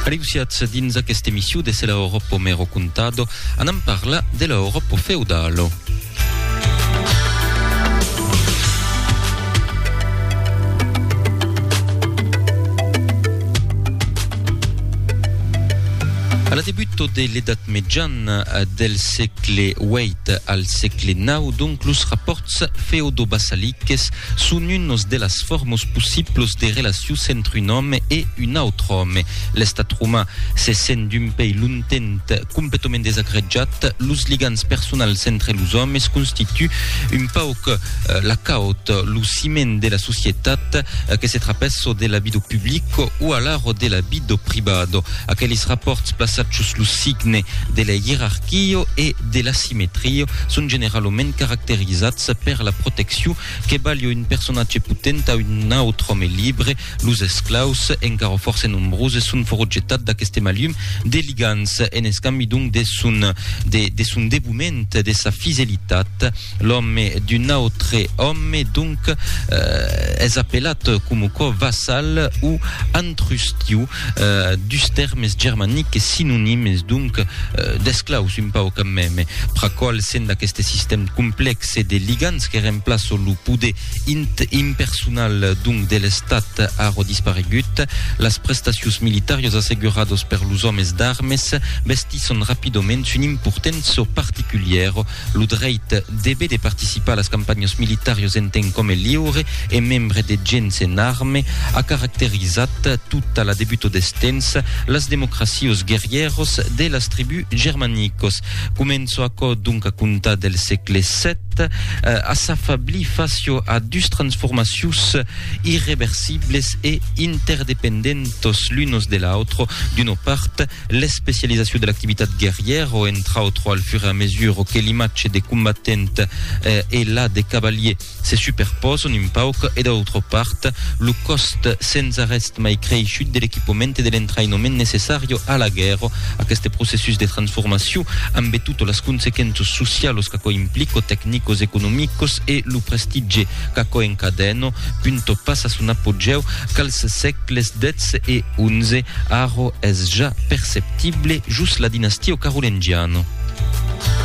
Aleusiatz dins aquesta emission de Se l'Aoroppo me ro contado, anam parlar de l'Aoroppo feudalo. A la debuto de l'Edat Mejana, del sègle viii al sègle nau, donc los rapòrts feodo-basaliques, Son unos de las formos possiblos de relacius entre un òme e un autre òme. L'estat romà se sent d'un pei lontent completament desagretjat, los ligams personals entre los òmes constitu un pauc la caot, lo ciment de la societat, que se trapesso de l'abido publico o alaro de l'abido privado. Aquelis rapòrts plaçachos lo signe de la ierarquio e de l'asimetrio son generalament caracterizats Sa per la protecciu que balho un personatge potent a un autre òme libre, los esclaus, encara fòrça nombroses, son fòro jetat d'aqueste malhum de ligants. En escambi donc de son de de son devoment, de sa fidelitat, l'òme d'un autre òme donc es apelat coma quò vassal o antrustiu. dus tèrmes germaniques sinonimes donc d'esclaus un pauc a meme, pra qual sent aqueste sistèm complèxe de ligants que remplaço lo poder impersonal donc de l'Estat arro disparegut, las prestacions militàrios assegurados per los òmes d'armes vestisson rapidament son importènço particulièro Lo dreit debe de participar a las campanhas militàrias en temps qu'òme liure e membre de gents en arme a caracterizat tota la debuta deth temps las democracias guerrièras de las tribús germanicas. Comença aquò donc a comptar del sègle vii a s'afablir fàcia a dus transformacions irreversibles e interdependentas l'unas de l'autra, d'una part, L'especializacion de l'activitat guerrièr o entra au tròal fur e a mesur que l'imatge de combatent e la de cavalier se superpòson un pauc e d'autra part, lo còst sens arrèst mai creishut de l'equipament e de l'entraïnament necessario a la guèrra. Aqueste processus de transformacion, ambe tot las consequenças socialos qu'aquò implica, tecnicos, economicos e lo prestitge qu'aquò encadèno punto passa son apogèu qu'als sègles xii e xi, arro es ja perceptible jos la dinastia o carolengiano.